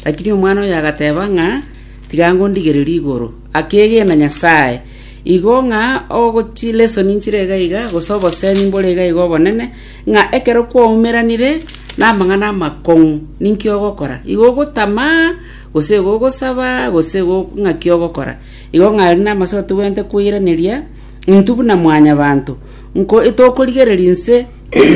Lakini omwana oye agateba ng'a, Tiga ngondigererie igoro. Akeegena Nyasae. Igo ng'a ogo chisoni nchire iga iga, gose obosemi mbore iga iga obonene, ng'a ekero kwaumeranire namang'ana amakong'u, ninki ogokora? Igo ogotama, gose igo ogosaba, gose igo ng'aki ogokora? Igo ng'a aria namache ago tobwenerete koiraneria, intwe buna mwanyabanto, nko tokorigereria inse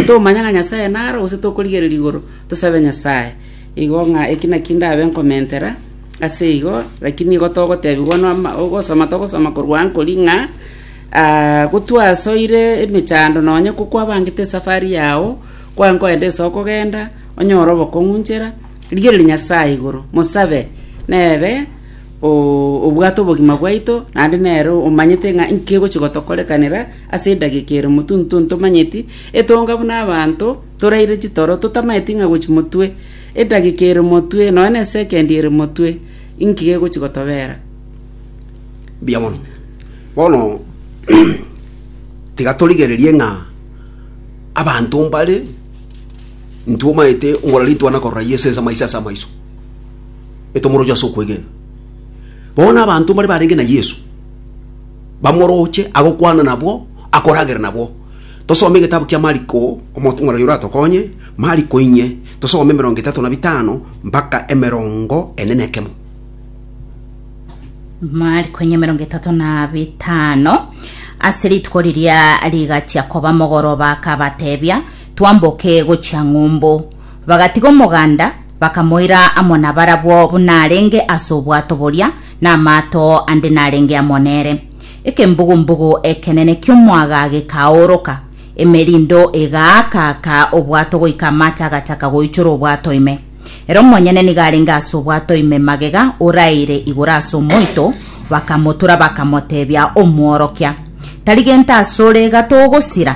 tomanye ng'a Nyasae naro, gose tokorigereria igoro tosabe Nyasae. Igo ng'a eki nakio ndabe nkomentera ase igo, rakini igo togotebigwa nomo ogosoma togosoma korwa ankori ng'a, gotwasoire emechando nonye ko kwabangete esafari yao, kware nkoenda ase okogenda, onyore obokong'u nchera, rigereria Nyasaye igoro, mosabe nere o- obwate obogima bwaito, naende nere omanyete ng'a nki egochi gotokorekanera ase edageka ere motuntwe ntomanyeti, etonga buna abanto. Toraire chitoro, totamaeti ng'a gochi motwe, edageka ere motwe, nonya ne sekendi ere motwe, inki gegochi gotobera? Mbuya mono. Bono tiga torigererie ng'a abanto mbare ntomaete ngora ritwana korora Yeso ense amaiso ase amaiso, etomoroche ase okwegena. Bono abanto mbare barenge na Yeso, bamoroche, agokwana nabwo, akoragera nabwo. Tosome egetabu kia Mariko, omotong'oreri oratokonye. Mariko inye, tosome emerongo etato na bitano mpaka emerongo ene na ekemo. Mariko inye emerongo etato na bitano ase rituko riria rigachia koba mogoroba akabatebia twamboke gochia ng'umbu bagatiga omoganda bakamoira amo nabarabwo buna arenge ase obwato boria na amato ande narenge amo nere Ekembugu-mbugu ekenene ki'omoaga gekaoroka, emerindo egaaka-aaka obwato goika amache agataka goichora obwato ime. Ere omonyene nigo arenge ase obwato ime magega oraeire igoro ase omoito, bakamotura bakamotebia omworokia, Tari gento asore, gatogosira.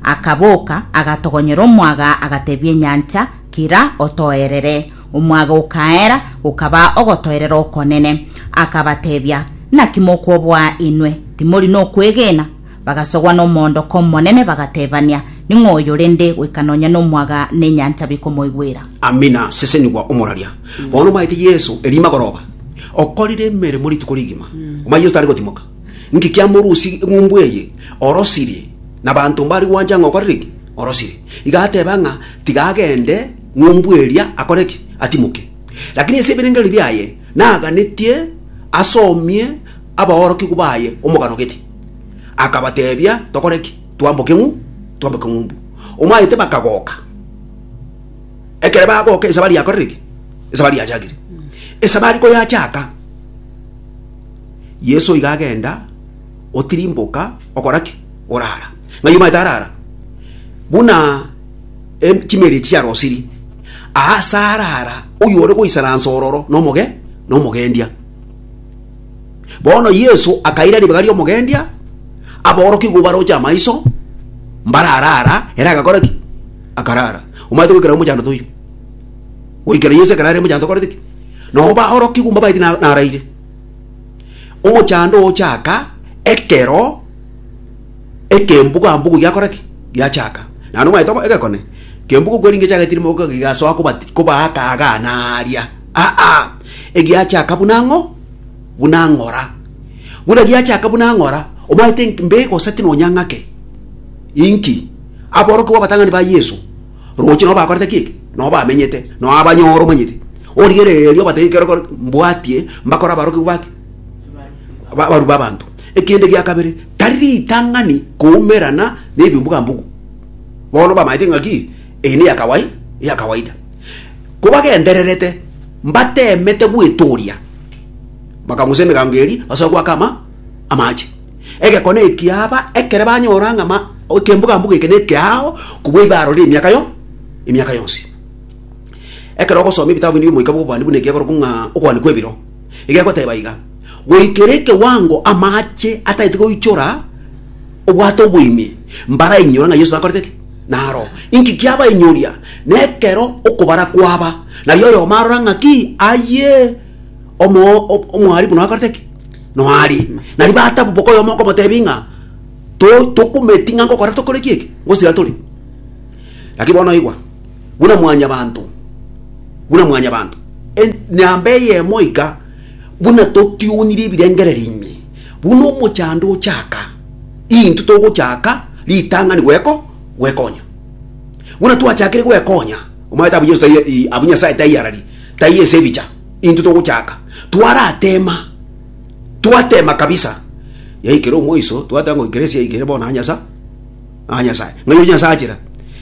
Akaboka, agatogonyera omoaga, agatebia enyancha, Kira, otoerere. Omwaga okaera, gokaba ogotoerera okonene. Akabatebia, Naki mokwoboa inwe? Timori nokwegena? Bagasogwa nomoondoko omonene, bagatebania, Ning'o oyo rende goika nonya nomwaga na enyancha bikomoigwera? Amina, sesenigwa omoraria. Bono omaete Yeso erio magoroba, okorire emeremo rituko rigima, omaye Yeso tari gotimoka. Inki kiamorusirie eng'umbu eye orosirie, na abanto mbari gwancha ng'a okorire ki? Orosirie. Iga ateba ng'a tiga agende, Ng'umbu eria akore ki? Atimoke. Lakini ase ebirengererio biaye naganetie asomie abaorokigwa baye omogano gete. Akabateebia, Tokore ki? Twamboke ng'u? Twamboke ng'umbu. Omanyete bakagoka. Ekero bagoka esabari yakorire ki? Esabari yachakire. Esabari koyachaka, Yeso iga agenda, otirimboka, okora ki? Orara. Ng'ai omanyete arara? Buna em, chimeeri echi chiarosiri aa ase aare ara oyore goisaransa ororo nomoge nomogendia. Bono Yesu akaira ribaga ri'omogendia, aborokia igwa baroche amaiso, mbarara ara, ere agakora ki? Akarara. Omanyete goikera omochando toiyo? Goikera Yesu ekarara omochando okorete ki? Nao baorokia igwa mbabaeti na- naraire. Omochando ochaaka ekero Ekembugu-ambugu giakora ki? Giachaka. Naende omanyete obo egekone kembugu kweringia chiagetire mogoka gigasoa kobati kobaaka agaa na aaria, aa egiachaka buna ng'o buna ng'ora. Buna giachaka buna ng'ora, omanyete nki? Mbe egoseti nonya ng'ake? Inki? Aborokigwa abatang'ani ba Yeso roche nabo bakorete ki eke? Nabo bamenyete, nao abanyore, omanyete. Origerereria obate ekero kore mbwatie mbakore abarokigwa ba ki? abaru b'abanto. Ekende gia kabere, tari ritang'ani koumerana nebimbuga-mbugu. Bono bamaete engaki eye neya kawai, eya kawaida. Kobagendererete, mbateemete gwetoria, bakang'usa emegango eri basoe goaka ama amache. Egekone eki aba ekere banyora ng'a ma ekembuga-mbugu eke nekeao kobua ibe arorire emiaka yo emiaka yonsi. Ekero ogosoma ebitabu binde biomoika bw'obobani buna ekiakorokwa ng'a Okoani kw'ebiro, egegoteba iga, Goikera ekewango amaache atagete goichora obwate oboime, mbarainyore ng'a Yeso nakorete ki? Naro. Inki kiabainyoria? Nekero okobara kwaba, nario oyomo arora ng'a ki? Aye omo omwarimu nakorete ki? Noari. Nario bataboboka oyomo okomotebia ng'a to tokumeti ng'a nkokora tokore ki eke? Ngosira tore. Lakini bono igwa. buna mwanyabanto, buna mwanyabanto, en- namba eyemo iga, buna totionirie ebirengererio ime, buna omochando ochaka, intwe togochaka ritang'ani gweko gwekonya. Buna twachakire gwekonya, omanyete abwo Yeso tai i- abwo Nyasae taiyarari, taiyo ase ebicha, intwe togochaka, twaratema, twatema kabisa, yaikera omoiso, twateba ng'o ekero esia yaikire bono aa Nyasa. a Nyasae, ng'a yoyio Nyasae achera,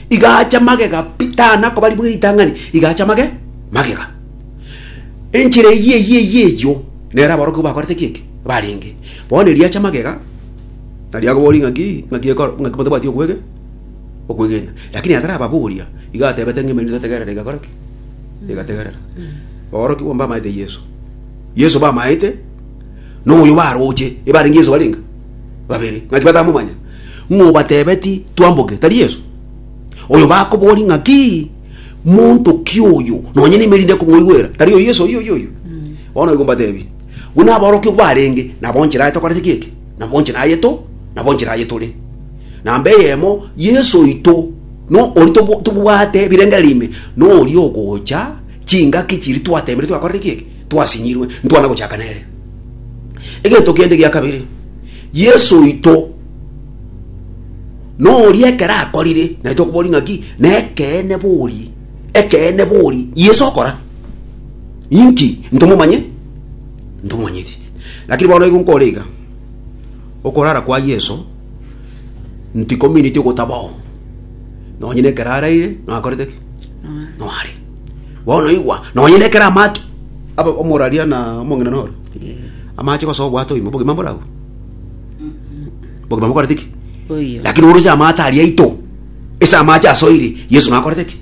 igacha magega pi, tana koba ribuge ritang'ani, igacha mage magega. Enchera eyio eyio eyio eyio nere aborokigwa bakorete ki eke? Barenge. Bono eriacha magega, nario akoboria ng'aki, ng'aki ekor, ng'aki motabwati okwege, okwegena. Lakini atarababoria, iga atebete ng'a emerito totegerera egakora ki? Egategerera. Aborokigwa mbamaete Yeso. Yeso bamaete, na oyo baroche, ebarenge Yeso barenge. babere, ng'aki batamomanya, ng'a obatebeti twamboke, tari Yeso? Oyo bakobori ng'aki monto ki oyo, nonye neime rinde komwoigwera, tari oyo Yeso oyio oyio? Bono igo mbatebi, buna aborokigwa barenge, nabo nchera aye tokorete ki eke, nabo nchera aye to, nabo nchera aye tore. Na mbe eyemo, Yeso oito, no ori tobo- tobwate birengererio ime, noria ogocha, chingaki chiri twateemire twakorire ki eke? twasinyirwe, ntwana gochaka nere. Egento kende gia kabere, Yeso oito noria ekero akorire, naye tokoboria ng'aki, na ekeene bori, ekeene bori Yeso okora. Inki? Ntomomanye? Ntomomanyeti. Lakini bono igo nkore iga, okorara kwa Yeso ntikomineti ogotabao, nonye nekero araire, nakorete ki? Noare. Bono igwa, nonye nekero amache aba omoraria na omong'ina nore, amache gose obwate oimo, obogima mborabwo? Obogima bokorete ki? Oyo. lakini oroche amato aria aito ase amache asoire yesu nakorete ki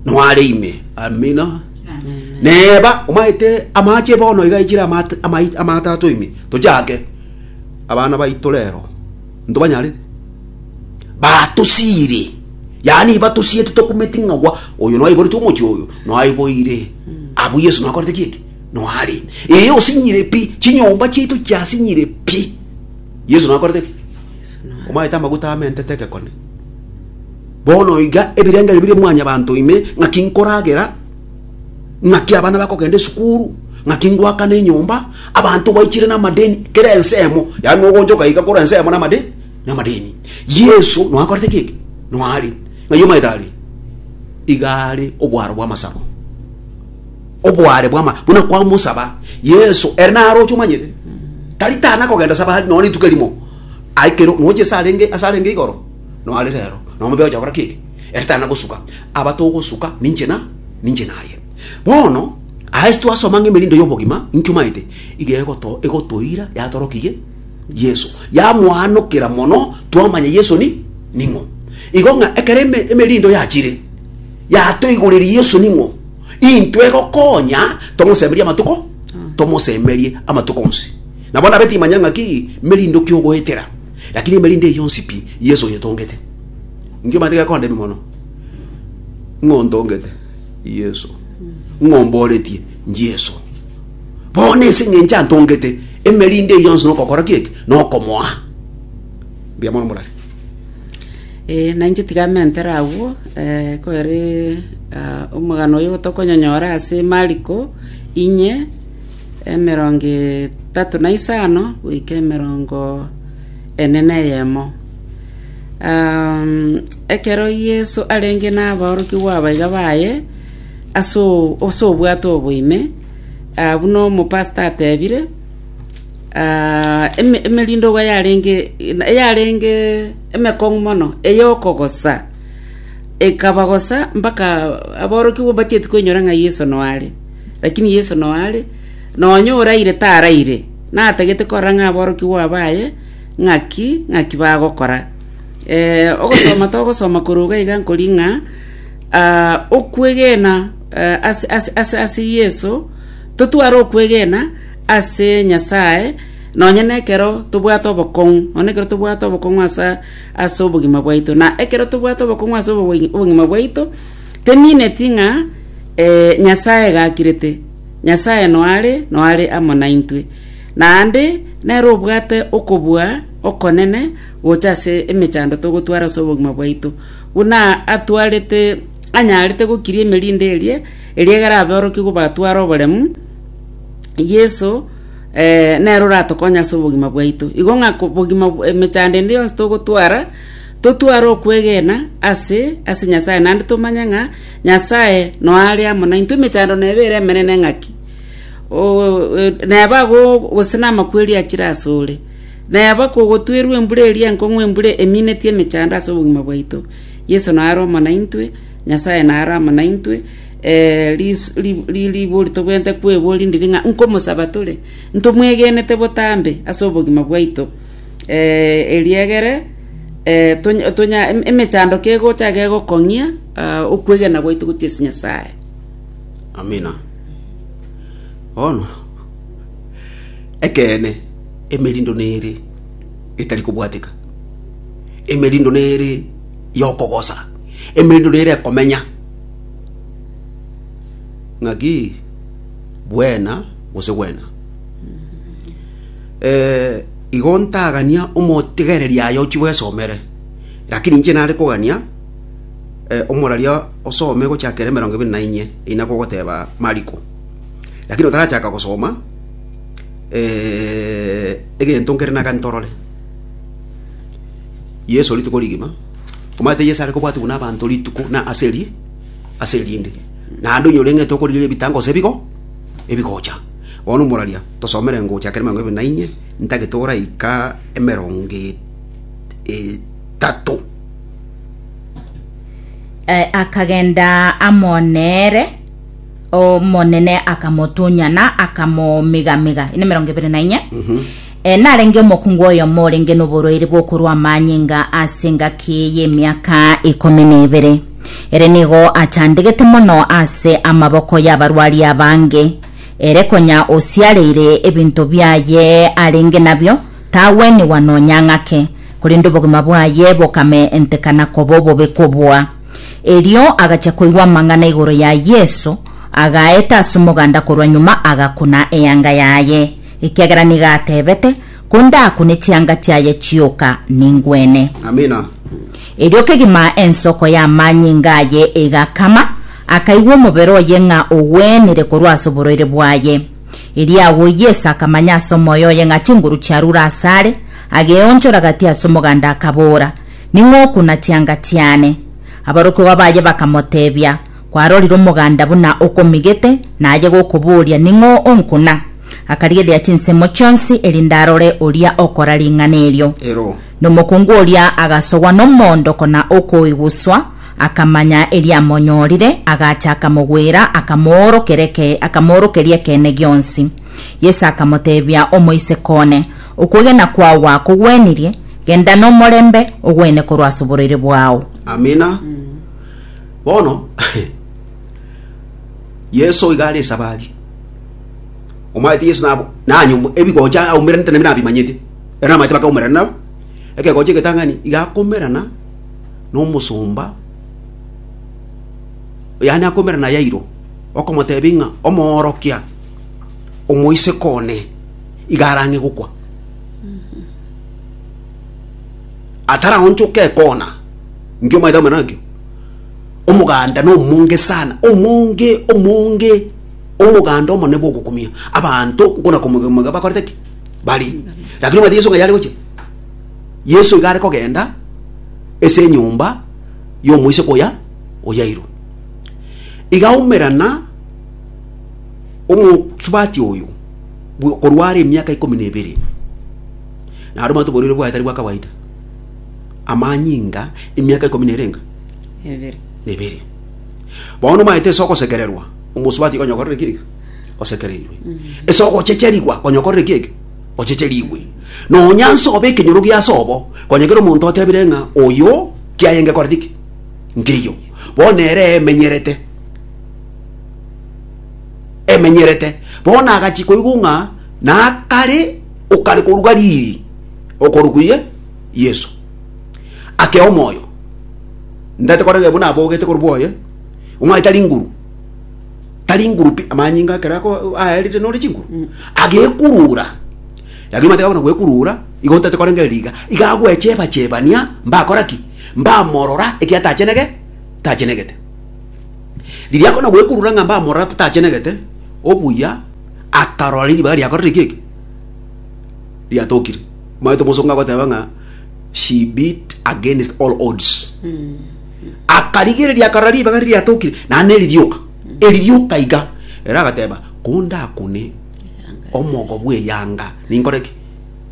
noare ime amina neba omanyete amache bono iga aichire amate amai- amato ato ime tochake abana baito rero Ntobanyarete. Batosiire, yaani batosiete tokumeti ng'a gwa oyo noaiborete omochie oyo noaiboire. Abwo Yesu nakorete ki eke? Noare. Ee osinyire pi, chinyomba chiaito chiasinyire pi. Yesu nakorete ki? Omaete amaguta amentete egekone. Bono iga ebirengererio bire mwanyabanto ime ng'aki nkoragera ng'aki abana bakogenda esukuru ng'aki ngoakana enyomba abanto baichire namadeni kera ensemo yaani nogonchoka iga kora ensemo namadeni namadeni yesu noakorete kiki noari ng'ai omanyete ari igare obwaro bw'amasabo obware bwama buna kwa musaba yesu ere naroche omanyete tari tana kogenda saba no rituko erimo aikero noche asarenge asarenge igoro no ari rero no mobe ocha gora keke ere tari na gosuka, aba togosuka ninche na ninche naye. Bono aa ase twasoma ng'a emerindo y'obogima inki omaete, iga egoto egotoira yatorokirie Yeso, yamoanokera mono twamanya Yeso ni ning'o. Igo ng'a ekero eme emerindo yachire, yatoigoreria Yeso ning'o, intwe egokonya tomosemerie amatuko tomosemerie amatuko onsi. Nabo nabe timanya ng'a ki merindo ki ogoetera, lakini emerindo eye yonsi pi Yeso oyetongete. Inki omanyete gekondemia mono? Ng'a ontongete Yeso, ng'a omboretie Yeso. Bono ase eng'encho antongete, emerinde eye yonsi nokokora ki eke? Nokomoa. Mbuya mono morare. Eh, na inche tiga mentere agwo eh, kwere ah, omogano oyo tokonyonyora ase Mariko inye emerongo etatu na isano goika emerongo ene na eyemo Um, ekero Yeso arenge nabaorokigwa abaiga baye ase o- ase obwato obo ime, ah, buna omopasta atebire, ah, eme- emerindogwa yarenge yarenge emekong'u mono eyokogosa ekabagosa mpaka aborokigwa mbacheti koinyora ng'a Yeso noare. Lakini Yeso noare, nonya oraire taraire, natagete korora ng'a aborokigwa baye. ng'aki ng'aki bagokora. Eh, ogosoma togosoma korwa iga iga nkori ng'a ah, okwegena eh, ase, ase, ase, ase yesu totware okwegena ase nyasae nonye na ekero tobwate obokong'u nonye na ekero tobwate obokong'u asa ase obogima bwaito na ekero tobwate obokong'u ase obogi- obogima bwaito temineti ng'a eh, nyasae egakirete nyasae noare noare amo naintwe Naende nere obwate okobua okonene gocha ase emechando togotwara ase obogima bwaito, buna atwarete anyarete gokiria emerinde eria, eria egere aborokigwa batware oboremu, Yeso eh, nere oratokonye ase obogima bwaito. Igo ng'a ko- bogima bw- emechando ende yonsi togotwara, totware okwegena ase ase Nyasae, naende tomanye ng'a Nyasae noyo are amo naintwe, emechando neba ere emenene ng'aki. Neba ago gose namakweri achire asore. Neba kogotwerwe embura eria enkong'u embura emineti emechando ase obogima bwaito. Yeso naro amo naintwe, Nyasaye naro amo naintwe, ribori tobwenerete kweboria ndiri ng'a nkomosaba tore, ntomwegenete botambe ase obogima bwaito. Eria egere emechando kegocha egekong'ia okwegena gwaito gochia ase Nyasaye. Amina. Bono, ekeene, emerindo nere etari kobwateka, emerindo nere y'okogosa, emerindo nere ekomenya. Ng'aki bwena gose gwena. Eh, igo ntagania omotigereri aye ochia bwesomere, lakini inche nare kogania. omoraria osome gochaka ere emerongo ebere na inye, eyi nakogoteba Mariko. Lakini otarachaka gosoma, egento nkere naga ntorore. Yeso rituko rigima, omanyete Yeso are kobwatwa buna abanto rituko na ase eri, ase erinde. Naende onye oreng'ete okorigereria ebitango gose ebigo, ebigocha. Bono omoraria tosomere gochaka ere emerongo ebere na inye, ntagete oraika emerongo etato. Eh, akagenda amo nere omonene akamotunyana akamomigamiga ine mirongo ibere na inye Eh, narenge omokungu oyomo orenge noborwaire bwokorwa amanyinga ase engaki y'emiaka ikomi na ibere ere nigo achandegete mono ase amaboko y'abarwari abange ere konya osiareire ebinto biaye arenge nabio Tagwenigwa nonya ng'ake, korende obogima bwaye bokamentekana koba obobe kobua. Erio agachia koigwa amang'ana igoro ya Yeso, agaeta ase omoganda korwa nyuma agakuna eanga yaye, ekiagera nigo atebete, Kondakune chianga chiaye chioka, ningwene. Amina. Erio kegima ensoko y'amanyinga aye egakama, akaigwa omobere oye ng'a ogwenire korwa ase oborwaire bwaye. Erio agwo Yeso akamanya ase omoyo oye ng'a chinguru chiarure asare, ageonchora gati ase omoganda akaboora, Ning'okuna chianga chiane. Aborokigwa baye bakamoteebia, Kwarorire omoganda buna okomigete, na aye gokobooria, Ning'o onkuna? Akarigereria chinsemo chionsi, erinde arore oria okora ring'ana erio. Ero. Na omokungu oria agasogwa nomoondoko na okoiguswa, Akamanya eriamonyorire, agacha akamogwera, akamoorokera eke, akamoorokeria ekeene gionsi. Yeso akamotebia, Omoiseke one, okwegena kwao gwakogwenirie, genda nomorembe, ogwene korwa ase oborwaire bwao. Amina. Bono Yeso iga are esabari. Omanyete Yeso nabo nanye omo- ebigocha aumerana nabimanyete. Ero namanyete bakaumerana nabo. Ekegocha egetang'ani iga akomerana nomosomba, yaani akomera na Yairo, okomotebia ng'a omoorokia omoiseke one iga arang'e gokwa. Ataraonchoka ekona, nkio omanyete akomera nakio? Omoganda na omonge sana, omonge, omonge, omoganda omonene bwa ogokumia. Abanto nkona komoiga moiga bakorete ki? Bari. Lakini omanyete Yeso ng'a yare gochia? Yeso iga are kogenda ase enyomba y'omoiseke oya o Yairo. Iga aumerana omosubati oyo bw- korwa are emiaka ikomi na ebere. Naro mwanto oborwaire bwaye tari bwa kawaida. Amanyinga emiaka ikomi na erenga Ebere. na ebere. Bono omanyete ase ogosekererwa omosubati konya okorire kiege? Osekereirwe. Ase ogochecherigwa konya okorire kiege? Ochecharigwe, na onyanse obe ekenyoro gia ase obo, konya kera omonto otebire ng'a oyo kiaye ngekorete ki, nkeiyo, bono ere emenyerete, emenyerete, bono agachia koigwa ng'a nakare okare korwa Galili okorwa kuye Yesu. Ake omoyo, ntaete korega buna abogete korwa bwoye, omwai tari nguru. tari ngurupi amanyinga akere ako aerire nore chinguru agekurura lakini mateka bona gwekurura igo otate korengereria iga iga agwecheba chebania mbakora ki mbamorora eki atachenege tachenegete riria akona gwekurura ng'a mbamorora tachenegete obuya akarora ribaga riakorire ki eke riatokire omanyete omosongo agoteba ng'a she beat against all odds akarigereria akarora ribaga riria riatokire naende neri rioka eri rioka iga ere agateba kondakune omogo bw'eyanga ninkore ki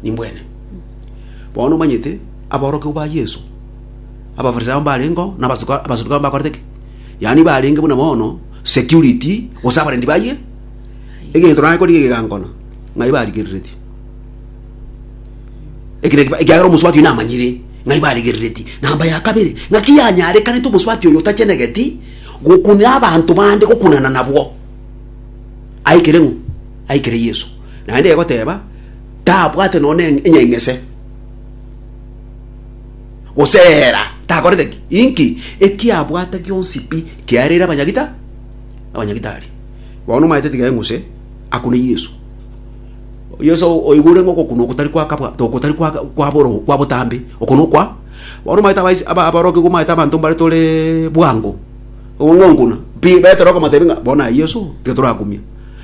nimbwene bono omanyete aborokigwa ba yesu abafarisao mbarengeo na abasuka- abasadukayo mbakorete ki yaani barenge buna bono security gose abarendi baye egento naye korigia egegankona ng'ai barigereretie Ekero ekiba- ekiagera omosubati oyo namanyire ng'ai baregerereti. Namba ya kabere, ng'aki yanyarekanete omosubati oyo otachenegeti gokunera abanto bande gokunana nabwo? Aikire ng'o? Aikire Yeso. Naende egoteba, tabwate nonya ne enyaing'ese, goseera, takorete ki? Inki? Ekiabwate gionsi pi kiareire abanyagita abanyagitari. Bono omanyete tiga eng'use akune Yeso. Oyio ase oigure ng'a ogokunwa ogotari kwa kabwa ogotari kwa kwa boro kwa botambe okunwa okwa bono omanyete abaisi aba aborokigwa omanyete abanto mbare tore bwango ong'onkuna pi betera okomotebi ng'a bono na Yeso tiga torakumia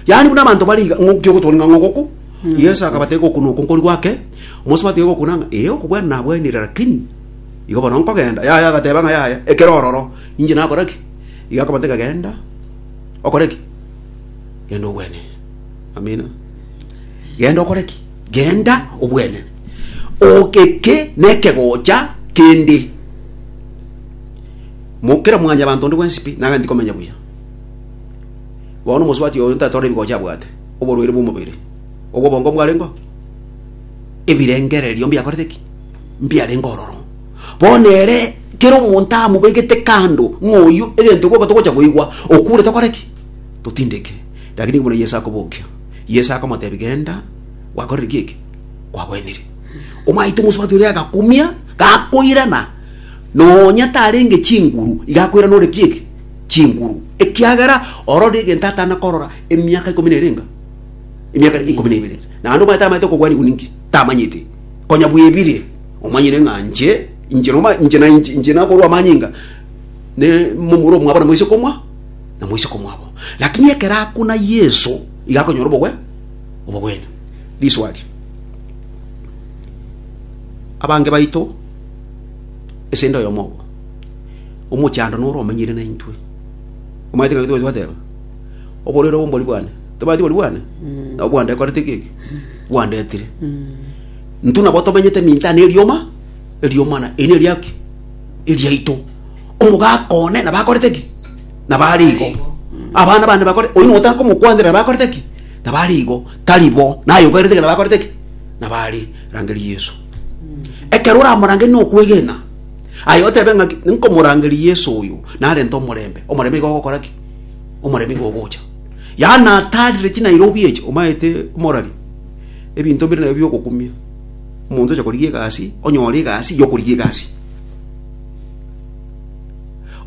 yaani buna abanto bari iga ng'o kiogotwani ng'a ng'ogoku Yeso akabatebia ogokunwa okwo nkori gwake omonsi batiga ogokuna ng'a ee okobwana nabwenire lakini igo bono nkogenda yaya agateba ng'a yaya ekero ororo inche nakora ki iga akabatebia genda okore ki genda ogwene Amina. Genda okore ki? Genda obwenene. O- Eke nekegocha kende. Mo- Kera mwanyabanto onde bwensi pi, nagende komenya buya. Bono omosubati oyo ntatore ebigocha abwate, oborwaire bw'omobere, obw'obongo mbwarengeo, ebirengererio mbiakorete ki? Mbiarenge ororo. Bono ere kera omonto amobegete kando ng'a oyio egento gioka togocha koigwa, okure tokore ki? Totindeke. Lakini buna Yeso akobokia, Yeso akamotebia, Genda, gwakorire ki eke? Kwagwenire. Omanyete omosubati oria agakumia, gakoirana, nonya tarenge chinguru, iga akoirana ore ki eke? Chinguru. Ekiagera ororire egento atana korora emiaka ikomi na erenga? Emiaka ere ikomi na ebere. Naende omanyete amanyete okogwanigwa ninki? Tamanyeti. Konya bwebire, omanyire ng'a inche, inche noma, inche na inche, inche nakorwa amanyinga, ne momura omwabo na moiseke omwa, na moiseke omwabo. Lakini ekero akuna Yeso, iga akonyora obogwe obogwene. Riswali, abange baito esende oyomo obo omochando noro omenyire naintwe omanyete ngaki tobati twateba oborere obo mbori bwane tobati bori bwane nabo bwandekorete keki bwandetire ntu nabo tomenyete minto ane erioma eriomana eri neriaki eriaito Omogaka one nabakorete ki? Nabare igo. Abana bane bakore, oyo notaka komokwanera nabakorete ki? Nabare igo. Tari bo, naye ogaerete ki? Nabakorete ki? Nabare. Rangeria Yesu. Ekero oramorange nokwegena, aye otebe ng'aki, nkomorangeria Yesu oyo, narente omorembe. Omorembe igo ogokora ki? Omorembe igo ogocha. Yaani natarire chinairobi echi, omaete omorari, ebinto mbire nabio biogokumia. Omonto ocha korigia egasi, onyore egasi yokorigia egasi.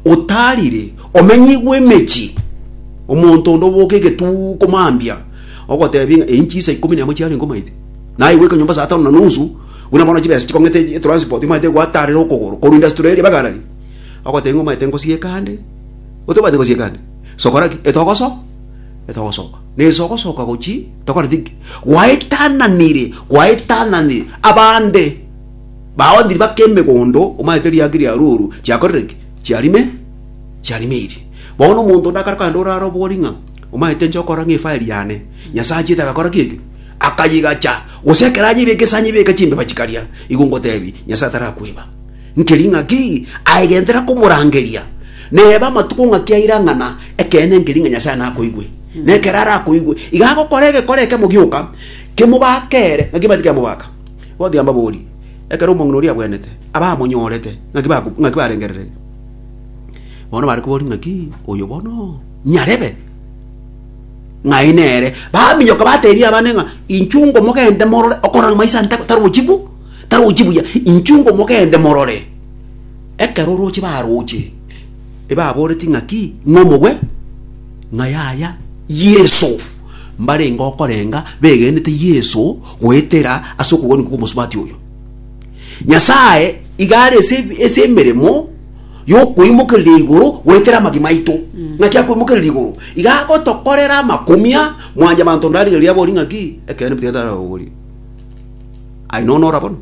otarire, omenyigwe emechie, omonto onde oboke egetuko mambia, ogoteba ng'a eyi nchisa ikomi na emo chiarenge omaite, naye goika nyomba saa tano na nusu, buna bono chibesa chikong'ete etranspoti omanyete gwatarire okogoro korwa Industriaria mpaka Galleria, ogoteba ng'a omanyete ngosieke ande, otobwate ngosieke ande, sokora ki? Etogoso etogosoka, na ase ogosoka gochia tokoreti ki? Gwaetananire gwaetananire abande. Baondirie bake emegondo, omanyete riake ria rioru chiakorire ki? Chiarime, chiarimirie. Bono omonto onde akare kogenda orare obori ng'a, omanyete inche okora ng'a efire yane, Nyasae achiete agakora ki eki? Akayigacha, gose ekero anyebeke ase anyebeke chimbeba chikaria, igo ngotebi, Nyasae tarakweba. Nkeri ng'aki? Aegentera komorangeria, neba amatuko ng'aki airang'ana, ekeene nkeri ng'a Nyasae nakoigwe. Na ekero arakoigwe, iga agokora egekore ekemo gioka, kemobake ere, naki ebati kemobaka. Gothiia mbaborie, ekero omong'ina oria agwenete, abamonyorete ng'aki barengereretie? Bono bare koboria ng'aki oyo bono nyarebe, ng'ai nere. Baminyoka bateebia abande ng'a, Inchungo mogende morore okore ng'a maiso ande tarochi bo, tarochi buya, inchungo mogende morore. Ekero oroche baroche, ebaboretie ng'aki, ng'a omogwe, ng'a yaya Yeso. Mbarenge okorenga begenete Yeso goetera ase okogania kw'omosubati oyo. Nyasae iga are ase ase emeremo y'okoimokereria igoro goetera amagima aito. Ng'aki akoimokereria igoro? Iga agotokorera amakumia mwanche abanto onde arigereria abori ng'aki ekeene pi tiga tararogorie. Aye nonya ora bono?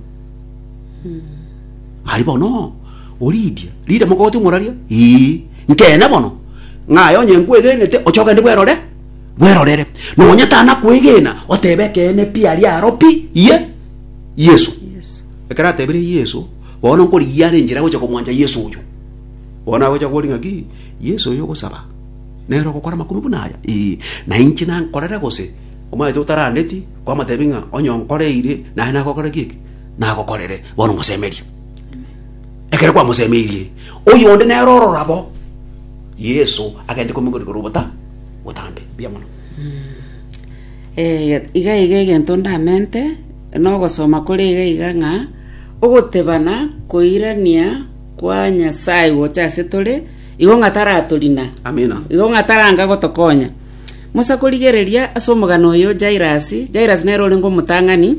Ari bono oridia rire mogote omoraria? Ii. Nkeene bono ng'aye onye nkwegenete oche ogende bwerore? Bwerorere, nonya tanakwegena, otebe ekeene pi aria aro pi iye Yesu. Yesu. Ekero atebire Yesu, bono nkorigia are enchera gocha komwancha Yesu oyo. Bono agocha kori ng'aki, Yesu oyo ogosaba, nere ogokora amakunu buna aya? Ee, na inche nankorere gose? Omanyete otarandeti, kwamotebi ng'a onye onkoreire, naye nagokora ki eke? Nagokorere. Bono mosemerie. Ekero kwamosemeirie, oyonde nere ororo abo, Yesu agende komoigoro igoro obota, botambe. Mbuya mono. Eh, iga iga egento ndamente nogosoma kore iga iga ng'a ogotebana koirania kwa nyasaye gocha ase tore igo ng'a taratorina Amina. igo ng'a taranga gotokonya musa korigereria ase omogano oyo jairasi jairasi nere orenge omotang'ani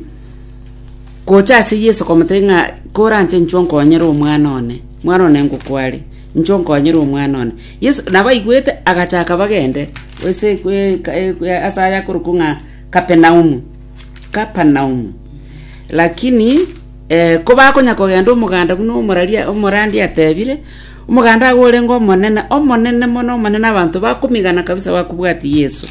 gocha ase yeso komotebia ng'a koranche inchwe nkonyere omwana one mwana one ngokware inchwe nkonyere omwana one Yeso nabaigwete, agachaka bagende ase aye akorokwa ng'a Kapernaumu, Kapernaumu. Lakini kobakonya kogenda omoganda buna omorandi atebire, omoganda agwo orenge omonene, omonene mono, omonene abanto bakomigana kabisa bakobwatia Yeso.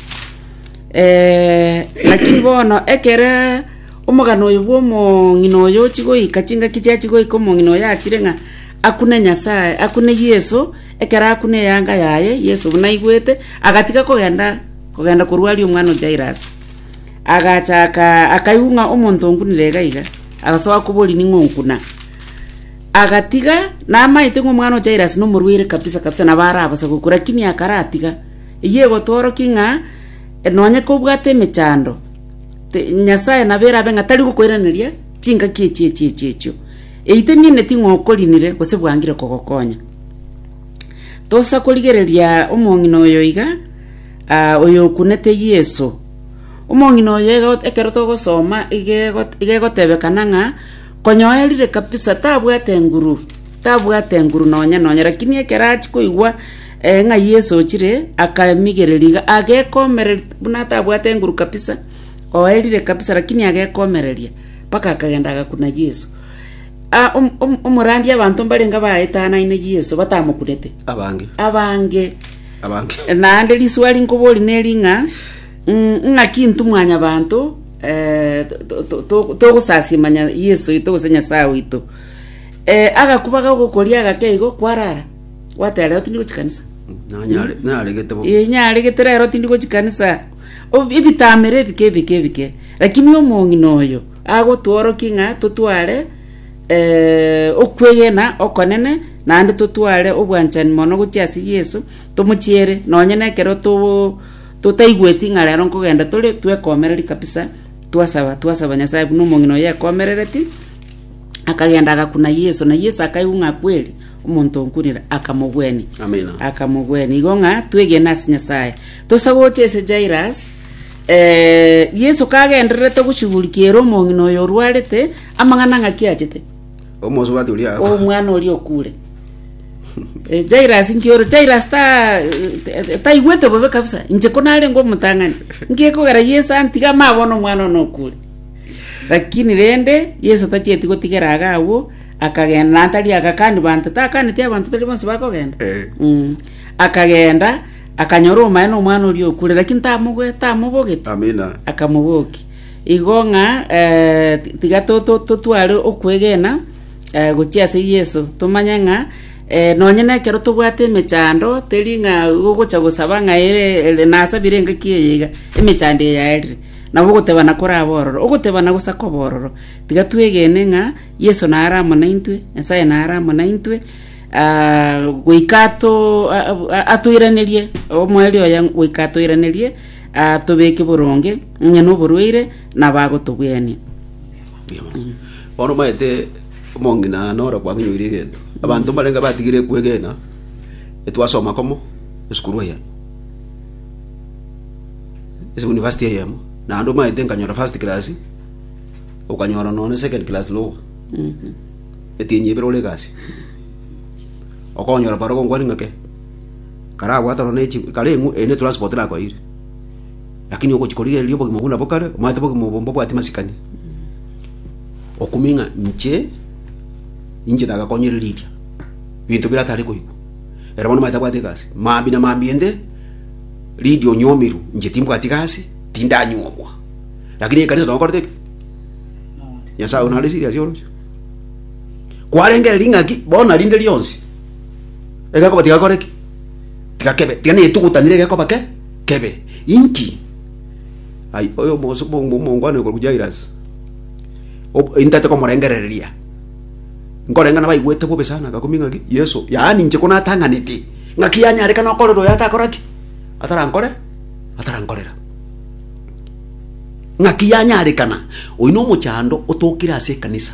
Lakini bono ekere omogano oyo bw'omong'ina oyo ochia goika, chingaki chiachia goika omong'ina oyo achire ng'a akune Nyasaye, akune Yeso. Ekero akuna eyanga yaye, Yeso buna aigwete, agatiga kogenda kogenda korwa aria omwana o Jairus. Agacha aka akaigwa ng'a omonto onkunire iga iga, agasoa koboria ning'o onkuna. Agatiga namaete ng'a omwana o Jairus nomorwaire kabisa kabisa nabo arabasa gokwa, lakini akaratiga. Eyio egotworokia ng'a nonye kobwate emechando, te- Nyasaye nabo erabe ng'a tari gokoiraneria chingaki echi echi echi echio. Eyi temianeti ng'a okorinire gose bwangire kogokonya. Tosa korigereria omong'ina oyo iga, ah, oyokunete Yeso. Omong'ina oyo ego- ekero togosoma iga ego- iga egotebekana ng'a konyoerire kabisa tabwate enguru, tabwate enguru nonya nonya rakini ekero achia koigwa ng'a Yeso ochire, akamigereria iga agekomereri buna atabwate enguru kabisa, oerire kabisa rakini agekomereria, mpaka akagenda agakuna Yeso. omorandia abanto mbarenge abaetanane Yeso batamokunete, Abange. abange Abange. naende riswari nkoboria neri ng'a mm, ng'aki intwe mwanyabanto eh, to- to- to- togosasia manya Yeso oito gose Nyasae oito Eh, agakubaga ogokoria agake igo kwarara gwatera rero tindi gochia kanisa Nanyare- Naregete bo. Eh, nyaregete rero tindi gochia kanisa Ob- ebitamero ebike ebike ebike lakini omong'ina oyo Agotworokia ng'a totware okwegena okonene, naende totware obwanchani mono gochia ase Yeso, tomochiere nonye nekero totaigweti ng'a rero nkogenda tore twekomereria kabisa, twasaba twasaba Nyasaye buna omong'ina oye akomerereti, akagenda agakuna Yeso, na Yeso akaigwa ng'a kweri omonto onkunire akamogwenia. Amina. Akamogwenia igo ng'a twegene ase Nyasaye. Tosa gocha ase Jairus. Yeso kagendererete ogochugurikia ere omong'ina oyo orwarete, amang'ana ng'aki achete? Omosubati oria agakwa. omwana oria okure. Eh, Jairus inki ore? Jairus ta taigwete bobe kabisa. Inche ko narenge omotang'ani. Inki kogera Yesu antiga ama bono omwana ono okure. Lakini rende Yesu tachieti gotigera aga agwo, akagenda na tari agakani banto, takaneti abanto tari bonsi bakogenda. Eh. Mm. Akagenda Akanyora omomaene omwana oria okure, lakini tamogoe- tamobogeti, Amina. akamobokia. Igo ng'a eh, tiga to- to- totware okwegena eh, gochia ase Yeso, tomanye ng'a eh, nonye na ekero tobwate emechando, teri ng'a igo ogocha gosaba ng'a ere ere nasabire engaki eye iga, emechando eye yaerire, nabo ogotebana koraba ororo, ogotebana gosa koba ororo. Tiga twegene ng'a Yeso naro amo naintwe, Nyasae naro amo naintwe, Ah, goika ato- a- a- atoiranerie, omoerio oye goika atoiranerie, atobeke boronge, onye noborwaire, nabo agotobwenia. Bono omanyete omong'ina noro kwakinyoire egento abanto mbarenge batigire kwegena etwasoma komo esukuru eyemo ase university eyemo naende omanyete nkanyora first class okanyora nonye second class lower Etienyi ebere ore egasi, okonyora barabwo ngwani ng'ake, karabwate oro ne kareng'u eye ne transport rakoeire, lakini ogochi korigereria obogima buna bokare, omanyete obogima obo mbobwati masikani, okumie ng'a inche, ninche tagakonyire Lydia, binto bire atare koigwa, ere bono omanyete abwate egasi, maambia na maambia ende, Lydia onyomirwe, inche timbwati gasi, tindanyuomwa, lakini ekanisa nokorete ki? Nyasaye one nare serious oroche. kwarengere ring'aki bono rinde rionsi egekoba tigakore ki tigakebe tiga netogotanire egekoba ke kebe inki ai oyo omogoso omongwana okorwa Jairus intete komorengereria nkoreng'ana baigwete bobe sana agakumia ng'aki Yeso yaani inche konatang'anete ng'aki yanyarekana okorera oyo atakora ki atarankore atarankorera Ng'aki yanyarekana, oyio nomochando otokire ase ekanisa,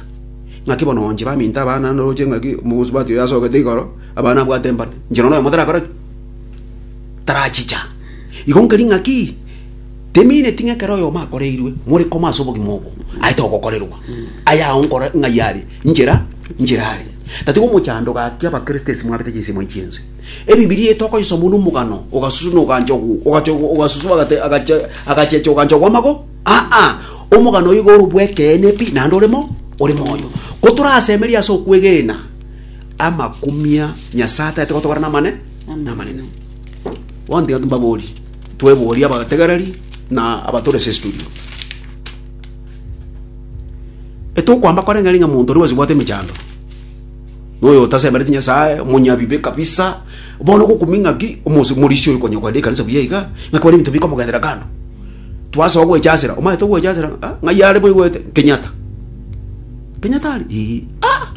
ng'aki bono onche baminto abana ndoroche ng'aki omosubati oyo asogete igoro, abana abwate mbane, inche nonya noyomo tarakore ki? Tarachicha. Igo nkeri ng'aki temineti ng'a ekero oyomo akoreirwe, more koma ase obogima obo, aye togokorerwa. Aye ao nkora ng'ai are? Inchera, inchera are. Tatiga omochando gaki abakristo ase mwabete chinsemo echi'ense. Ebibilia eye tokoyesoma buna omogano ogasuswa na ogancha ogwo, ogacha ogwo, ogasuswa agate- agacha agachecha ogancha gw'amago. Aa, omogano oyo igo ore bw'ekeene pi, naende ore mo, ore moyo. Ko torasemerie ase okwegena amakumia Nyasae ataete gotogora namane, namanene. Bono tiga mbabori, tweborie abategereri na abatore ase studio. Etokwamba koreng'aring'a monto oria bwase bwate emechando. noyo otasemeretie Nyasae, omonyabibe kabisa. Bono gokumia ng'aki omorisia oyo konya kogenda ekanisa buya iga, ng'aki bare ebinto bikomogenderera kando. Twasoa gwechasera, omanyete ogwechasera ng'a ng'ai are moigwete? Kenyatta. Kenyatta are? Ee. Ah!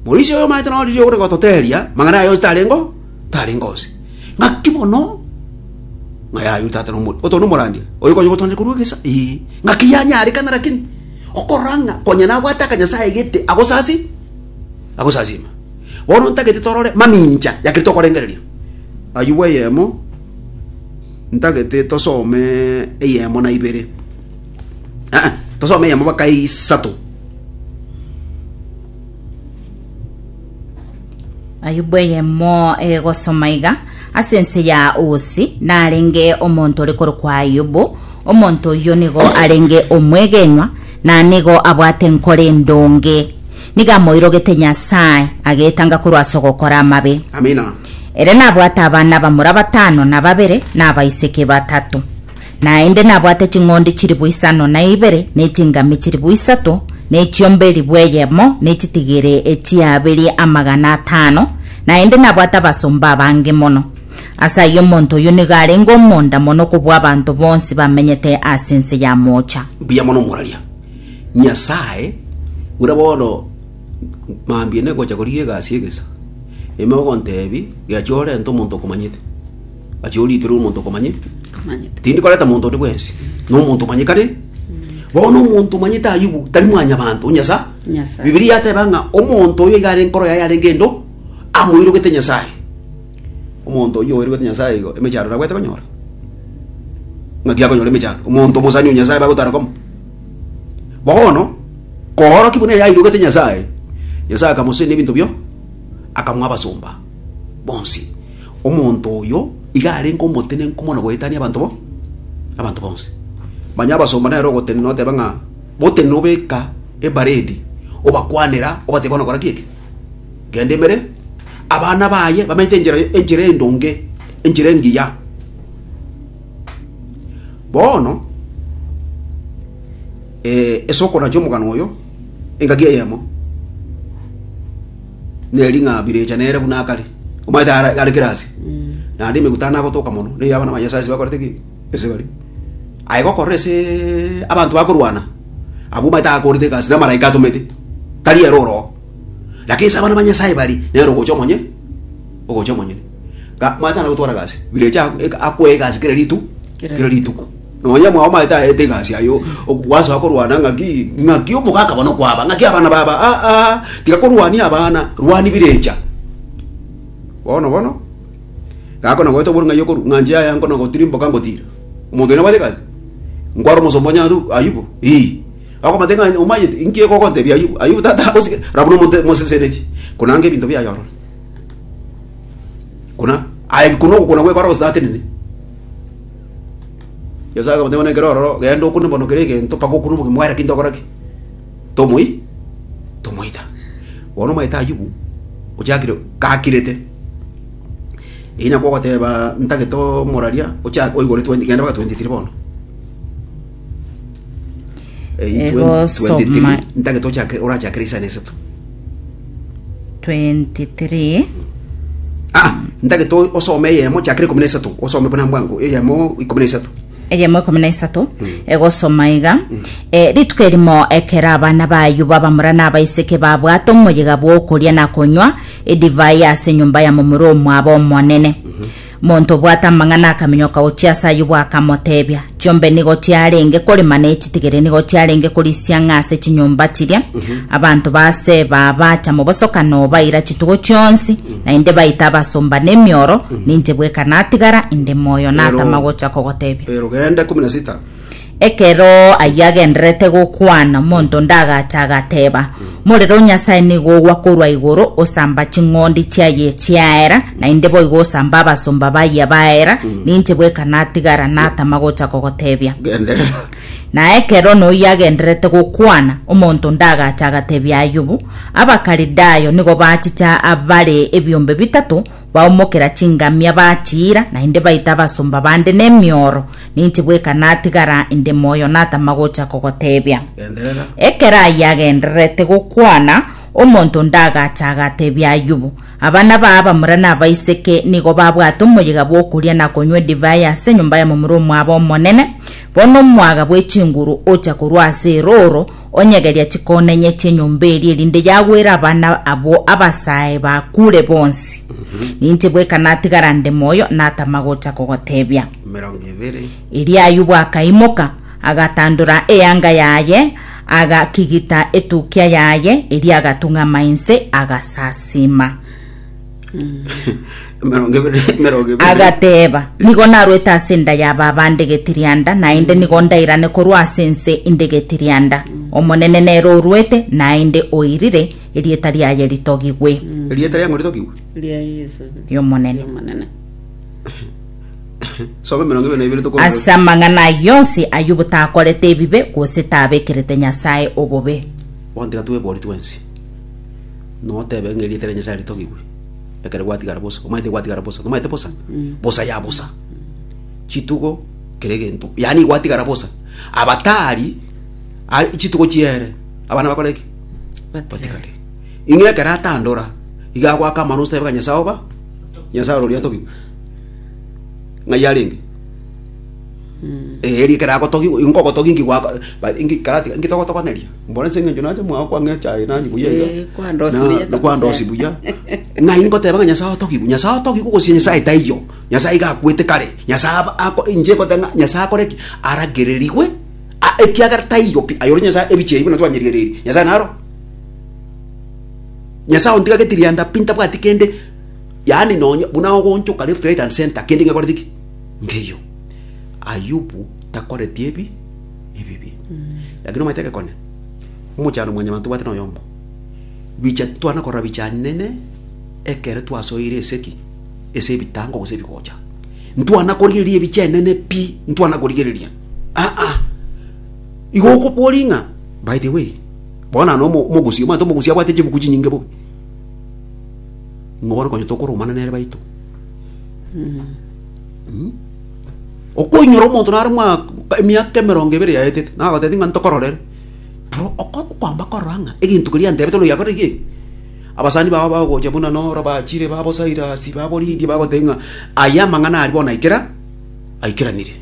Morisia oyo omanyete noro riria ogore gototeria, mang'ana aye onsi tarengo, tarengo onsi. Ng'aki mono, ng'a yaye oyio tata nomo oto nomorandia, oyo konya gotoanera korwa egesa? Ee. Ng'aki yanyarekana rakini. Okorora ng'a konya nabwate akanyasae gete agosasi, agosasima. Bono ntagete torore mamincha yakere tokorengereria. Ayubu eyemo, ntagete tosome eyemo na ibere. Ah, tosome eyemo baka isato. ayubu eyemo egosoma iga ase ense ya usi narenge omonto ore korokwa ayubu omonto oyio nigo arenge omwegenwa na nigo abwate enkoro endonge niga amoirogete nyasae agetanga korwa ase ogokora amabe Amina. ere nabwate abana abamura batano na babere na abaiseke batato Naende nabwate ching'ondi chilifu isano na ibere, na echingami chilifu isato, na echiombe elifu eyemo, na echitigiri echiabiri amagana atano, naende nabwate abasomba abange mono. Ase ayio omonto oyio nigo arenge omonda mono kobua abanto bonsi bamenyete ase ense ya moocha. Mbuya mono moraria Nyasae, buna bono mambia negocha korigia egasi egesa, ime ogontebi, Gechia orente omonto okomanyete. Achia oriikere omonto okomanye. Komanyete. Tindi koreta monto onde bwensi. Nomonto omanyekane. Bono omonto omanyete Ayubu tari mwanyabanto, Nyasae. Nyasae. Bibilia yateba ng'a omonto oyo iga are enkoro yaye yarenge endo, amoirogete Nyasae. Omonto oyio oirogete Nyasae igo, emechando nabwate konyora. Ng'aki akonyora emechando? Omonto omosani o Nyasae bagotara komo. Bono, koorokia buna eye airogete Nyasae, Nyasae akamosesenera ebinto bio, akamoa abasomba bonsi. Omonto oyo iga arenge omotenenku mono goetania abanto bo abanto bonsi. Manya abasomba nere ogotenena oteba ng'a botenena obeka ebaredi obakwanera obateba onakora ki eke genda emere abana baye bamenyete enchera enchera endonge enchera engiya. Bono. Ase okona chi'omogano oyo engaki eyemo neri ng'a birecha nere buna akare, omanyete are kera ase, naende emegutano agotoka mono na ey'abana ba Nyasae ase bakorete ki? Ase bare. Aye gokorora ase abanto bakorwana, abwo omanyete akorete egasi namaraika atomete, tari ere oroo. Lakini ase abana ba Nyasae baria, nere ogocha omonye ogocha omonyene. Omanyete naye ogotwara egasi, birecha akoe egasi kera ritu kera rituko. Na oyio omwao omanyete aete egasi aye gwasoa korwana ng'aki ng'aki omogaka bono kwaba ng'aki abana baba aa ah, ah, tiga korwania abana rwani birecha bono bono gakona goeta oboro ng'ai okoru ng'anche yaya nkona gotiri mboka ngotira omonto ina bwate gasi nkwara omosomba onya ayubu ii akomate ng'ai omanyete inki egogontebia ayubu ayubu tata agosike rabu nomonto moseseneti konanga ebinto biaye ororo kuna aye kuna okona gwekora gose tatenene Nyasae akamotebia, Bono ekero ororo, genda okune bono kera egento, mpaka okune oboke mware ki ntokore ki? Tomoi tomoita. Bono omanyete Ayubu ochakire gakirete, eyio nakwo ogoteba ntagete omoraria ocha oigoretwe genda mpaka 23 bono. Egosoma. 23 orachakere isano esato 23 ah ntagete osome eyemo chakere ikomi na esato osome buna bwango eyemo ikomi na esato eyemo ikomi na isato egosoma iga Eh, rituko erimo ekero abana bayo babamura na abaiseke babwate omoyega bw'okoria na konywa edivai ase enyomba ya momura omwabo omonene Monto obwate amang'ana akaminyoka gochia ase ayobwo akamoteebia, Chiombe nigo chiarenge korema na echitigere nigo chiarenge korisia ng'a ase chinyomba chiria abanto ba Seba baacha mobosokano baira chitugo chionsi, naende baita abasomba nemioro, ninche bweka natigara inde moyo natama gocha kogoteebia. Erogenda ikomi na sita. Ekero ayio agendererete gokwana, monto onde agacha agateba, Morero o Nyasae nigo ogwa korwa igoro osamba ching'ondi chiaye chiaera, naende boigo osamba abasomba baye baera, ninche bweka natigara natama gocha kogotebia. Genderera. Na ekero noyio agendererete gokwana, omonto onde agacha agatebia Ayubu, Abakalidayo nigo bachicha abare ebiombe bitato Baumokera chingamia bachiira, naende baita abasomba bande nemioro. Ninche bweka natigara inde moyo natama gocha kogoteebia. Genderera. Ekero aye agendererete gokwana, omonto onde agacha agateebia Ayubu, Abana baa abamura na abaiseke nigo babwate omoyega bw'okoria na konywa edivai ase enyomba ya momura omwabo omonene. Bono omwaga bw'echinguru ocha korwa ase erooro, Onye geria chikonenyetie enyomba eria erinde yagwere abana abwo abasae bakure bonsi. Ninche bweka natigara nde moyo natama gocha kogotebia. mirongo ibere Erio Ayubu akaimoka, agatandora eyanga yaye, agakigita etukia yaye, erio agatung'ama inse, agasasima. Emerongo ebere emerongo ebere. Agateeba, Nigo narwete ase enda ya baba nde getirianda, naende nigo ndairane korwa ase ense inde getirianda. Omonene nere orwete, naende oirire, erieta riaye ritogigwe. Erieta riang'o ritogigwe? Ria Yesu. Y'Omonene. Y'Omonene. Soma emerongo ebere na ibere tokoorora. Ase amang'ana ayio onsi, Ayubu takorete ebibe, gose tabekerete Nyasae obobe. Bono tiga twebori twensi. notebe ng'a erieta ria Nyasae ritogigwe, ekero gwatigara bosa, omanyete gwatigara bosa, nomanyete bosa, bosa ya bosa, chitugo kera egento, yaani gwatigara bosa, abatari are chitugo chiere, abana bakore ki? batigare. Ing'e ekero atandora, iga agoaka amano otebe ng'a Nyasae oba, Nyasae ore oria atogigwe, ng'ai arenge? Eh, eri ekero agotogigwa, inkogotogia inki gwako ba- inki karatiga inki togotogoneria? Mboro ase engencho nache mwao kwang'e echae nanyu buya iga. Eh, kwandosi buya Na- kabisa. kwandosi buya ng'ai ngoteba ng'a nyasae otogigwe nyasae otogigwe gose nyasae taiyo nyasae iga akwete kare nyasae aba- ako- inche ngote ng'a nyasae akore ki aragererigwe a- ekiagera taiyo pi aye ore nyasae ebichi ebi buna twanyerigereiri nyasae naro nyasae ontigageti rianda pi ntabwati kende yaani nonye buna ogoonchoka left right and centre kende ng'ekoreti ki nkeiyo ayubu takoreti ebi ebibe. Lakini omanyete egekone, omochando mwanyabanto tobwate noyomo, bicha twana korora bicha nene ekero twasoire esegi ase ebitango gose ebigocha. Ntwana korigereria ebicha enene pi, ntwana korigereria aa igo okobori ng'a by the way bono na omo- omogusi omanyete omogusi abwate chibuku chinyinge bobe ng'a bono konya tokoromana nere baito. Okoinyora omonto nare emiaka emerongo ebere yaetete, nagotebia ng'a ntokororere, nabo okoamba korora ng'a egento keria yantebete nonya yakore ki? Abasani bao bagocha buna noro bachire ba bo Sirasi, ba bo Lidia bagotebia ng'a aya amang'ana aria bono aikera, aikeranire.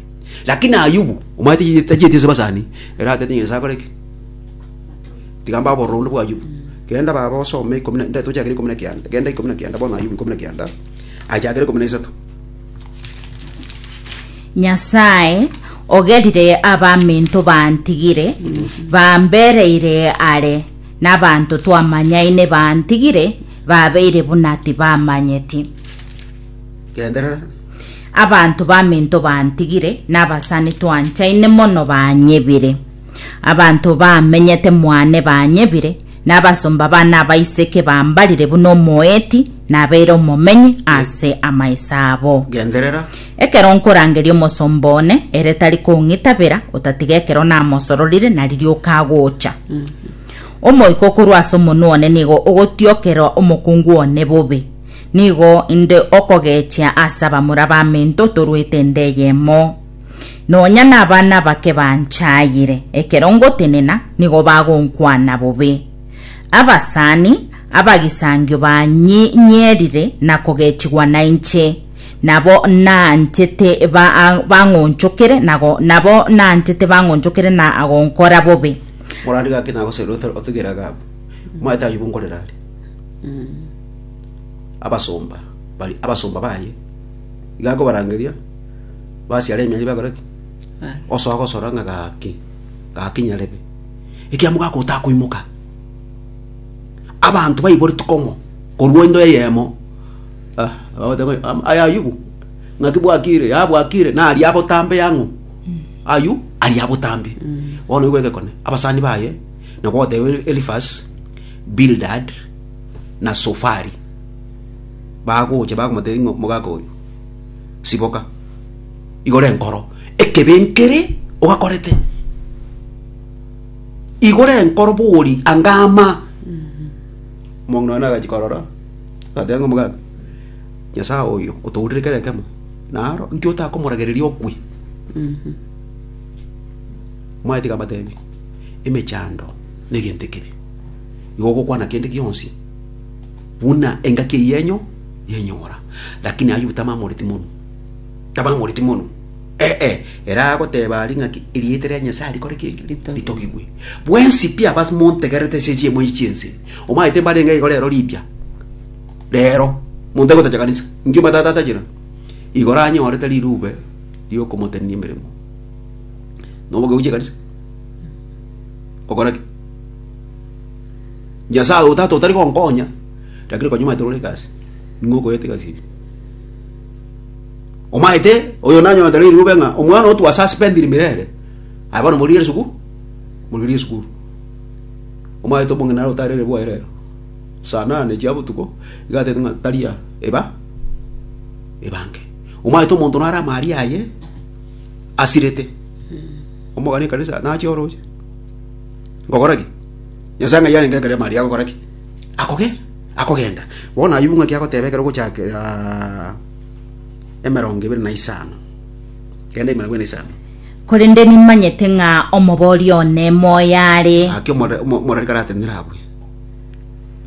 Lakini Ayubu, omanyete ki tachieti ase abasani, ere agatebia Nyasae akore ki? Tiga mbae obororo bwa Ayubu. Genda baba osome ikomi na, tochakere ikomi na kianda, genda ikomi na kianda bono Ayubu ikomi na kianda, aye chakera ikomi na isato. nyasae ogerire abaminto bantigire bambereire are nabanto twamanyaine bantigire babeire buna tibamanyeti Genderera. abanto baminto bantigire nabasani twanchaine mono banyebire abanto bamenyete mwane banyebire Na abasomba bane abaiseke bambarire buna omoeti nabeire omomenyi ase amaesa abo. Genderera. Ekero nkorangeria omosomba one, ere tari kong'itabera, otatiga ekero namosororire na riria okagocha. Omoika korwa ase omonwa one nigo ogotiokera omokungu one bobe. Nigo inde okogechia ase abamura b'aminto torwete inde eyemo. Nonya nabana abake banchayire, ekero ngotenena nigo bagonkwana bobe. Abasani abagisangio banyierire na kogechigwa nainche, nabo nanchete bang'onchokere nabo nanchete bang'onchokere na gonkora bobe. Morande gaki nagosaira otugere Agabu, omanyete ayio bonkorera are. Abasomba abasomba baye iga akobarangeria, basiara emyanya bakora ki Bana. osoa gosora ng'a gaki gaki nyarebe ekiamo gaka otakoimoka abanto baiboretwe kong'o korwa into eyemo ah abagoteba ng'a am- aye ayubu naki bwakire yabwakire nari abotambe yang'o ayu aria abotambe bono nigo egekone abasani baye nabo ogoteba Eli- Elifaz Bildad na Sofari bagocha bakomotebia ng'a omogaka oyo siboka igoro enkoro ekebe nkere ogakorete igoro enkoro bori anga ama omong'ina one agachi korora agateba ng'a omogaka nyasaye oyo otourire kera ekemo naro inki otakomoragereria okwe omanyete iga abatebi emechando negento ekibe igo ogokwana kende gionsi. Buna engaki eye yenyu yenyora. Lakini Ayubu tamamoreti monu. Tamamoreti monu. Ee, ere agoteba aria ng'aki erieta ria Nyasae rikore ki? Ritogigwe. Ritogigwe. Bwensi pi abas montegererete ase echiemo echi chi'ense. Omanyete mbarenge igo rero ripya. Rero. Monto agotacha kanisa. Inki omatata atachire? Igo ranyorete rirube riokomotenenia emeremo. Noboke gochia ekanisa? Okora ki? Nyasae oo tata otari gonkonya, rakire konya omanyete rore egasi, ning'o okoyete egasi eye? Omanyete oyo nanyonete riri obe ng'a omwana otwa ase asipendiri mirere, aye bono morigere sukuru, morigere sukuru. Omanyete obong'ina naro otarere bwaye rero. Saa nane chia botuko, iga atete ng'a taria eba, ebange. Omanyete omonto naro amaria aye asirete, omogani ekanisa nachia oroche. Ngokora ki? Nyasae ng'ai arenge ekero Maria agokora ki? Akogenda. Akogenda. Bono ayio bung'aki agoteba ekero ogochakera emerongo ebere na isano. Kenda emerongo ere na isano. Korende nimanyete ng'a omobori one moyo are. Gaki omorari omo- omorari karatenenere abwe.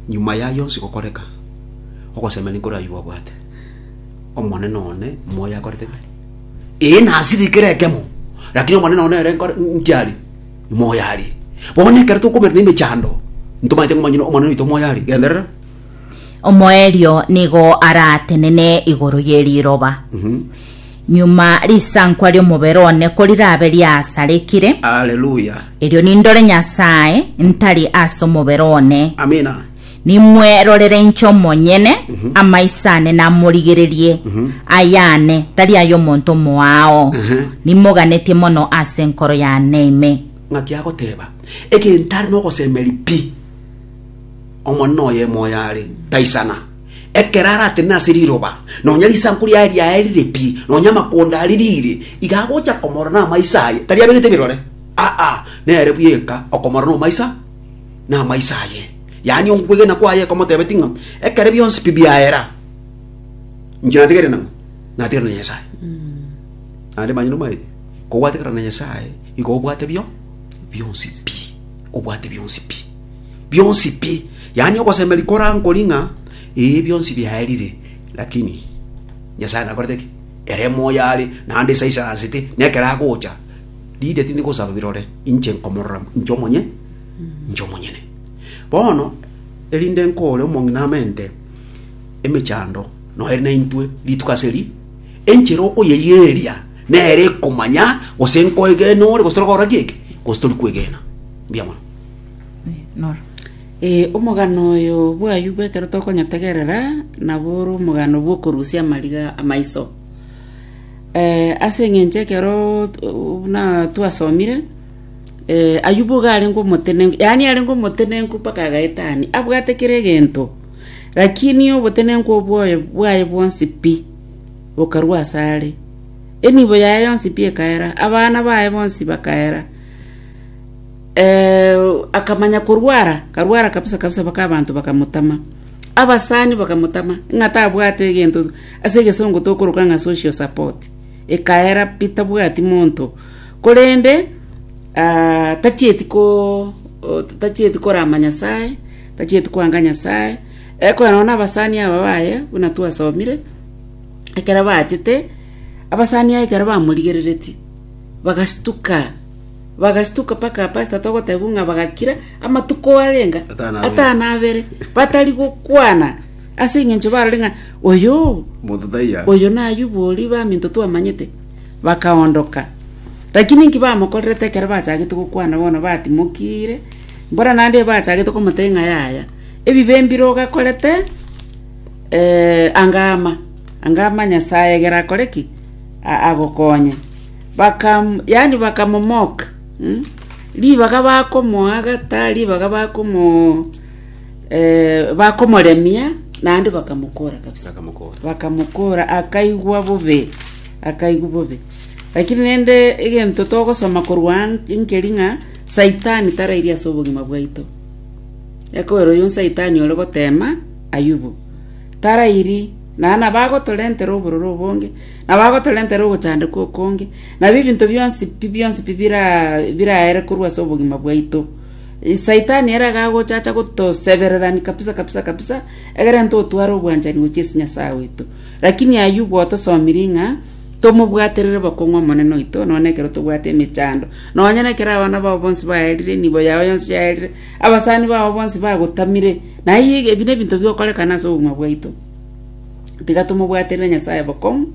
Nyuma y'ayio onsi gokoreka, ogosemia ninkoraywo bwabwate. Omonene one moyo akorete ki? Ee, nasirikire ekemo, lakini Omonene one ere nkore- nkiari. moyo are. Bono ekero tokomerwa nemechando, ntomanyete ng'a omonyene Omonene oito moyo are. Genderera. Omoerio nigo aratenene igoro ye riroba. Nyuma risankwa ri'omobere one korirabe riasarikire, Haleluya. erio nindore Nyasae ntari ase omobere one. Amina. Nimwerorere inche omonyene, amaiso ane namorigererie, ayane, tari ay'omonto omoao. Ehe. Nimoganetie mono ase enkoro yane ime. Ng'aki agoteba, egento are nogosemeri pi, Omonene oyemo oyo are, taisana. Ekero aratenene ase riroba, nonya risanku riaye riaye rire pi, nonya amakonda aria rire, iga agocha komorora namaiso aye, tari abegete ebirore, aa, nere buya eka okomorora nomaiso. namaiso aye, yaani okwegena kwaye ekomotebetia ng'a ekero bionsi pi biaera inche natigere nang'o? Natigere na Nyasae. Naende manye nomaete, kobwatekana na Nyasae igo obwate bio bionsi pi, obwate bionsi pi, bionsi pi, yaani ogosemeria korankori ng'a ee bionsi biaerire, lakini Nyasae nakorete ki? Ere moyo are, naende esaisansete, na ekero agocha Riria tindi gosaba birore, inche nkomorora inche omonye, inche omonyene. Bono, erinde nkore omong'ina amo ente, emechando noere naintwe rituko ase ri, enchera okoyeigereria nere ekomanya gose nkoegena ore gose tore kogora ki eke, gose tori kwegena. Mbuya mono. Noro. Ee, omogano oyo bwayio bw'ekero tokonyetegerera nabo ore omogano bw'okorusia amariga amaiso. Eh, ase eng'encho ekero t- buna twasomire eh, ayubu iga arenge omotenenku yaani arenge omotenenku mpaka agaetania abwate kera egento lakini obotenenku obwoye bwaye bwonsi pi bokarwa ase are enibo yaye yonsi pi ekaera abana baye bonsi bakaera eh, akamanya korwara akarwara kabisa kabisa mpaka abanto bakamotama abasani bakamotama ng'a tabwate egento. Ase egesongo tokoroka ng'a social support, ekaera pi tabwati monto, korende ah, tachieti ko o- tachieti korama Nyasae, tachieti kwanga Nyasae, ekogera nonya na abasani aba baye, buna twasomire, ekero bachete, abasani aba ekero bamorigerereti, bagastuka, bagastuka mpaka pastor togotebiwa ng'a bagakira, amatuko arenga Atano abere. atano abere, batari gokwana. Ase engencho barore ng'a oyo Mothithaiya. oyo n'Ayubu oria baminto twamanyete, bakaondoka. Lakini inki bamokorerete ekero bachagete gokwana bono batimokire? Mbora naende bachagete komotebia ng'a yaya, ebibe mbire ogakorete eh, anga ama, anga ama Nyasaye egere akore ki? A- agokonye. Bakam, yani bakamomoka. mm? Ribaga bakomoagata, ribaga bakomo eh, bakomoremia naende bakamokora kabisa Bakamokora. bakamokora akaigwa bobe akaigwa bobe lakini nende egento togosoma korwa an- inkeri ng'a saitani tarairi ase obogima bwaito ekobera oyo saitani ore gotema ayubu tarairi naye nabagotorentera obororo obonge nabagotorentera ogochandeka okonge nabo ebinto bionsi pi bionsi pi bira- biraere korwa ase obogima bwaito Saitani ere agagochacha gotosebererania kabisa kabisa kabisa, egere ntotware obwanchani gochia ase Nyasae oito. Lakini Ayubu otosomirie ng'a tomobwaterere bokong'u Omonene oito, nonye nekero tobwate emechando, nonye nekero abana bao bonsi baerire, enibo yao yonsi yaerire, abasani bao bonsi bagotamire, naiyo ebi nebinto bigokorekana ase obogima bwaito. Tiga tomobwaterere Nyasae bokong'u.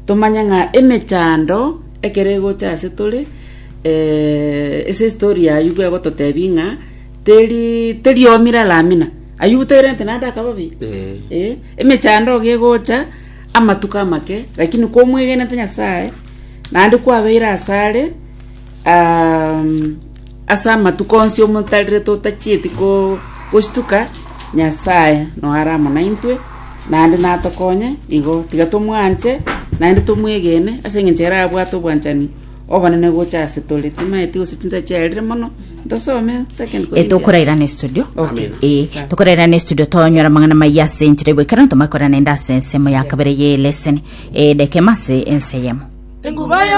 Tomanye ng'a emechando ekero egocha ase tore, ase estory ya Ayubu egototebia ng'a teri teriomire aramina, Ayubu tairentete naende akaba obe? Ee. Emechando iga egocha, amatuko amake, lakini komwegenete Nyasaye, naende kwabeire asare. um, ase amatuko onsi omotarire totachieti ko- gochituka nyasaye noe are amo naintwe naende natokonye igo tiga tomwanche naende tomwegene ase eng'encho ere abwate obwanchani obonene gocha ase tore timaeti gose chinsache chiarire mono ntosome second Eh, Corinthians. tokoraira ne studio Okay. Eh, Sasa. tokoraira ne studio tonyora mang'ana maiya ase enchera egoikera ntomakora nende ase ensemo ya kabere ye leseni edekema ase enseyemo enguba ya